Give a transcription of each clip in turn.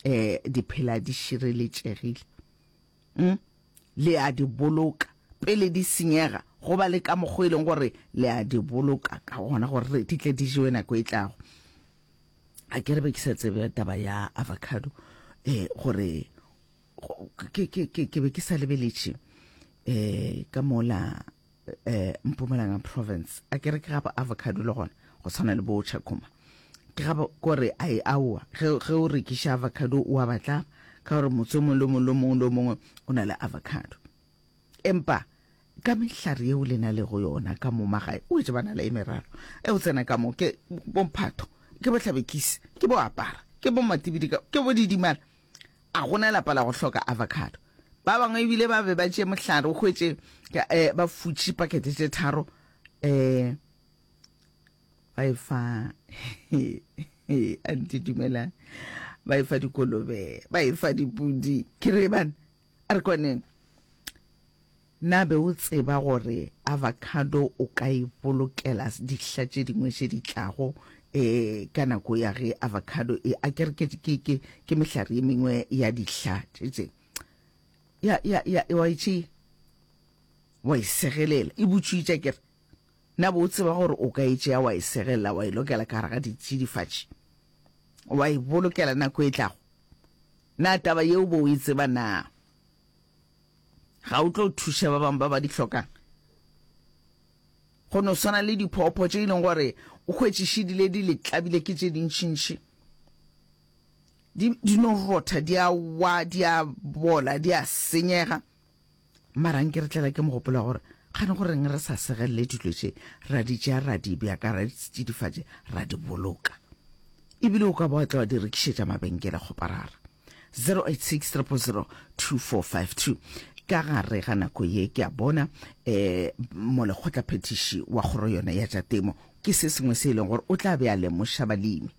eh di phela di šireletšegile mm? le a di boloka pele di senyega go ba le ka mokgwa e leng gore le a di boloka ka gona gore di tle di jewe nako e tlago a ke re be ke sa tsebe taba ya avocado eh gore ke be ke sa lebeletše um ka mola um mpumalanga province a kere ke gaba avocado le gona go tshwana le bo chakoma ke gaba kore a e aowa ge o rekiša avocado o a batla ka gore motse mongwe le mongwe le mongwe le mongwe o na le avocado empa ka mehlare yeo le na le go yona ka mo magae o etse bana le e meraro e o tsena ka mo ke bomphatho ke bohlabekisi ke boapara ke bo matibidika ke bo didimala A go na lapa la go hloka avocado? Ba bangwe e bile ba be ba tšee mohlare o hwetše eh, ba futše pakete tše tharo eh, ba e fa a nte dumelang ba e fa dikolobe ba e fa dipudi ke re bana A re kwaneng, Na be o tseba gore avocado o ka e bolokela dihla tše dingwe tše di tlago eh, ka nako ya ge avocado e, a ke re ke, ke, ke, ke mehlare ye mengwe ya dihla tše tše, ya, ya, ya, wa e tšea, wa e segelela, e butšwitša ke re, Na bo o tseba gore o ka e tšea wa e segelela wa e lokela ka gare ga ditsidifatši wa e bolokela nako e tlago? Na taba yeo bo o e tseba na? Ga o tlo thuša ba bangwe ba ba di hlokang? Go no swana le diphopho tše e leng gore o hwetšišedile di le tlabile ke tše dintšintši di, di no rotha di a wa di a bola di a senyega Mara nke re tlela ke mogopolo wa gore kgane go reng re sa segelele dilo tše ra di tšea ra di bja ka ra di tsidifatše ra di boloka ebile o ka ba wa tla wa di rekišetša mabenkele kgoparara 0863002452 ka gare ga nako ye ke a bona eh molekgotla phetiši wa kgoro yona ya tša temo ke se sengwe se e leng gore o tla be a lemoša balemi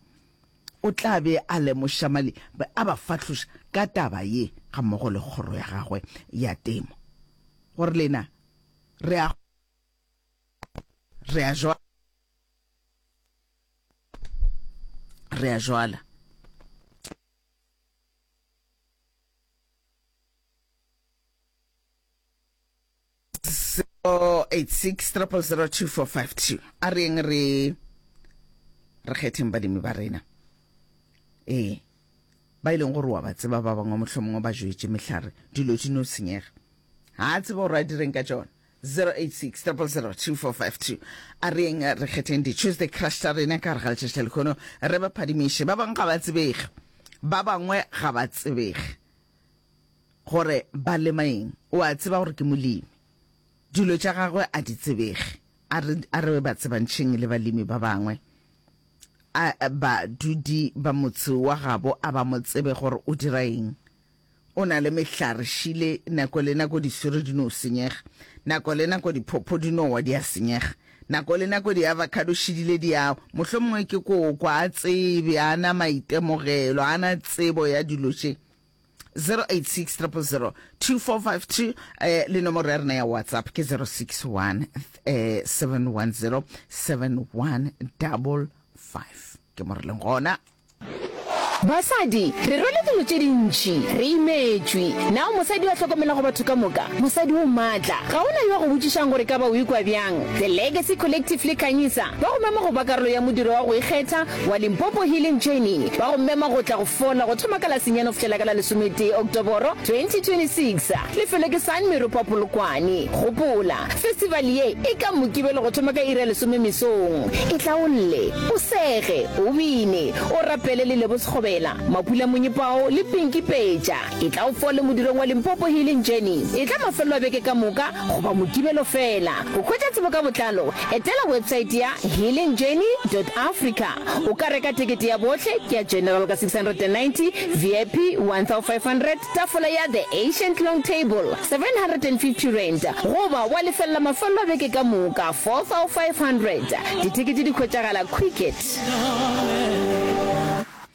O tla be a lemoša mali be a ba fahloša ka taba ye gammogo le kgoro ya gagwe ya temo, gore lena re a re a jwa re a jwala. 0863002452 a reng re re kgetheng badimi ba rena ee ba ileng e gore wa ba tseba ba bangwe motlho mongwe ba joetse mehlare dilo di no senyega ga a tseba gore a direng ka tsone 0863002452 a reng re kgetheng di-tuesday crush tsa rena ka re ga letšatši lekgono re ba phadimiše ba bangwe ga ba tsebege ba bangwe ga ba tsebege Gore ba lema eng? O a tseba gore ke molemi. Dilo tša gagwe a di tsebege. A re, a re ba tsebantšheng le balemi ba bangwe. A badudi ba motse wa gabo a ba mo tsebe gore o dira eng. O na le mehlare šile, nako le nako diswiri di no senyega, nako le nako diphopho di no wa di a senyega, nako le nako diavocado šidile di a wa. Mohlomongwe ke koko, a tsebe, a na maitemogelo, a na tsebo ya dilo tše. 0860002452 eh le nomoro ya rena ya whatsapp ke 061 eh 710 7155 ke mo re leng gona basadi re rwele dilo tše dintši re imetšwe nao mosadi wa hlokomelago batho ka moka mosadi o maatla ga ona yo a go botšišang gore ka ba o ikwa bjang the legacy collective le kanyisa ba go mema go ba karolo ya modiro wa go ikgetha wa Limpopo Healing Journey ba go mema go tla go fola go thoma ka la senyane go fihlela ka la lesometee Oktoboro 2026. Lefelo ke San Meropa Polokwane. Gopola, festival ye e ka Mokibelo go thoma ka iri ya lesome mesong. E hlaolle, o sege, o bine, o rapele le Lebo Sekgobela, Mapula Monyepao le Pinky Peja. Ke tla o fo le modirong wa Limpopo Hill in Journeys. Etla mafelelo a beke ka moka goba Mokibelo feela. Go hwetša tsebo ka botlalo, etela websaete ya healingjourney.africa. O ka reka tekete ya bohle, ke ya General ka 690, VIP 1500, tafola ya The Ancient Long Table R750, goba wa lefelela mafelelo a beke ka moka R4500. Ditekete di hwetšagala Quicket.